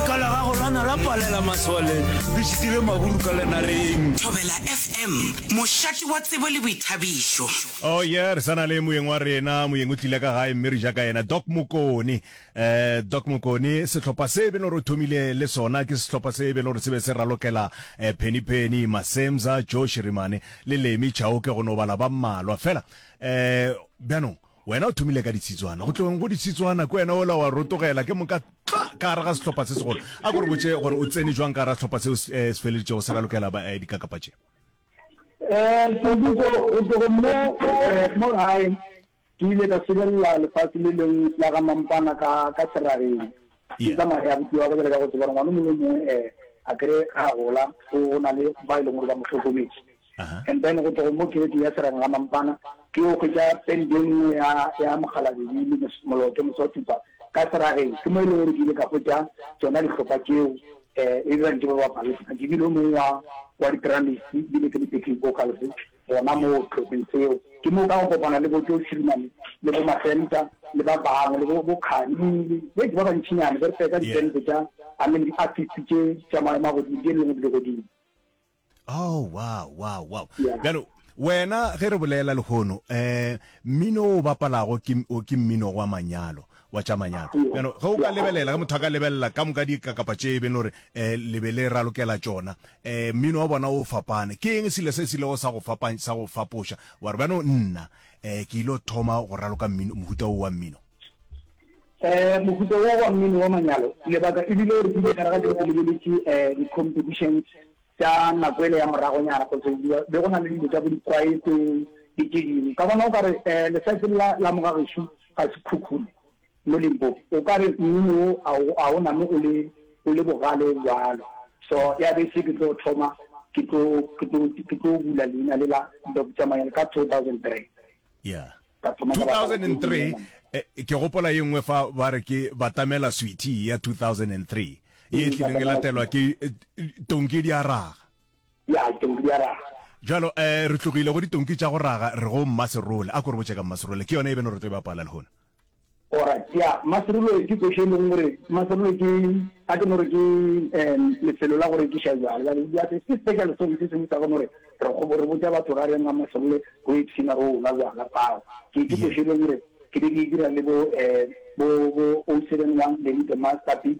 Ka la gago la na la palela masole le šitile maburu ka lenareng. Thobela FM, mošate wa tsebo le boithabišo. Oh yeah, re sa na le moyeng wa rena, moyeng o tlile ka gae mme re ja ka yena, Doc Mokoni. Eh, Doc Mokoni, sehlopha se e be le gore o thomile le sona ke sehlopha se e be le gore se be se ralokela eh, Penny Penny, Masemza, Joe Shirimane le Lemi Chauke go no bala ba mmalwa fela. Eh, bjanong Wena o thomile ka ditshitswana, go tlogeng go ditshitswana, ke wena ola wa rotogela ke moka tla ka gare ga sehlopha se segolo. A ko re botše gore o tsene jwang ka gare ga sehlopha seo se eh, feleditšego se ralokela ba eh, dikakapa tše. Eh, Seduko, go tlogo mo eh, mo gae ke ile ka sebelela lefase le leng la ga Mampana ka, ka serageng. Ke tsamaya ya botiwa ka bjale ka go tseba gore ngwana mongwe mongwe eh, a kere ga a gola o, o na le ba e leng gore ba mo hlokometše. and then go tlogo mo gate ya serang la mampana ke yo hwetša pente e nngwe ya ya mogalabedi le moloto mose wa tupa ka serageng ke mo e le gore ke ile ka hwetša tsona dihlopha tšeo um e dirang ke ba bapale sena ke bile o mongwe wa wa di-dramis bile ke le backing vocals gona mo tlhopheng seo ke mo ka go kopana le bojo shirimane le bo masenta le ba bangwe le bo kgani le ke ba bantšhinyane ba re feka di-pente tša i mean di-artist tše tša maemo a godimo di e leng go di le godimo oh wow wow wow yeah. bjalo wena ge re bolela lehono um mmino o bapalago ke mmino wa manyalo wa tša manyalo bjalo ge o ka lebelela ge motho a ka lebelela ka moka dikakapa tše e beng gore um eh, lebe le ralokela tšona um mmino wa bona o fapane ke eng selo se se lego sa go fapanya sa go fapoša wa re bjano nna um ke ile thoma go raloka mmino mohuta o wa mmino Mohuta wo wa mmino wa manyalo lebaka e bile gore ke ile gare ga tšeo ke lebeletše di-competitions tša nako ele ya moragonyana kotse be go na le dilo tša bo dikwaete le tše dingwe ka bona o ka re lesatsi la la mogagešo ga se khukhune mo Limpopo o ka re mmino wo a o name o le o le bogale bjalo so ya be se ke tlo thoma ke tlo ke tlo ke tlo bula leina le la Doctor Manyalo ka 2003. yeah 2003 eh, ke gopola ye nngwe fa ba re ke batamela sweetie ya 2003 ye e tlileng e latelwa ke eh, tonki di a raga ya tonki di a raga jalo um re tlogile go ditonki tša go raga re go mmaserole a ko re botse ka mmaserole ke yone e beno re tlo e bapala le gona Alright ya maserulo ke kwešo e leng gore maserulo ke a ke no re ke um lefelo la go rekiša jwale jale ya se ke special song se sengwe sa go no re re go re botša batho ra reng a maserule go ipshina go la jwala pao ke ke kwešo e leng gore ke be ke e dira le bo um bo bo o seven one le the master beat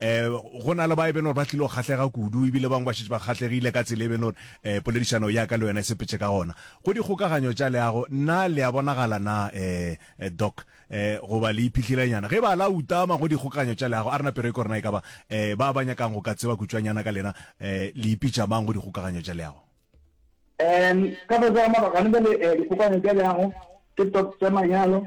um go na le ba e beno gore ba tlile go kgahlega kudu ebile bangwe ba šetse ba kgahlegile ka tsela e beno gore um poledišano ya ka le yona e sepetse ka gona go dikgokaganyo tša leago na le a bonagala na um doc um goba le iphihlelenyana ge ba la utama go dikgokaganyo tša leago a rena pero e korena e ka ba um ba ba nyakang go ka tseba kutšwanyana ka lena um le ipitša mang go dikgokaganyo tša leago um ka fase ga mabaka gane bjale dikgokaganyo tša leago ke top tša manyalo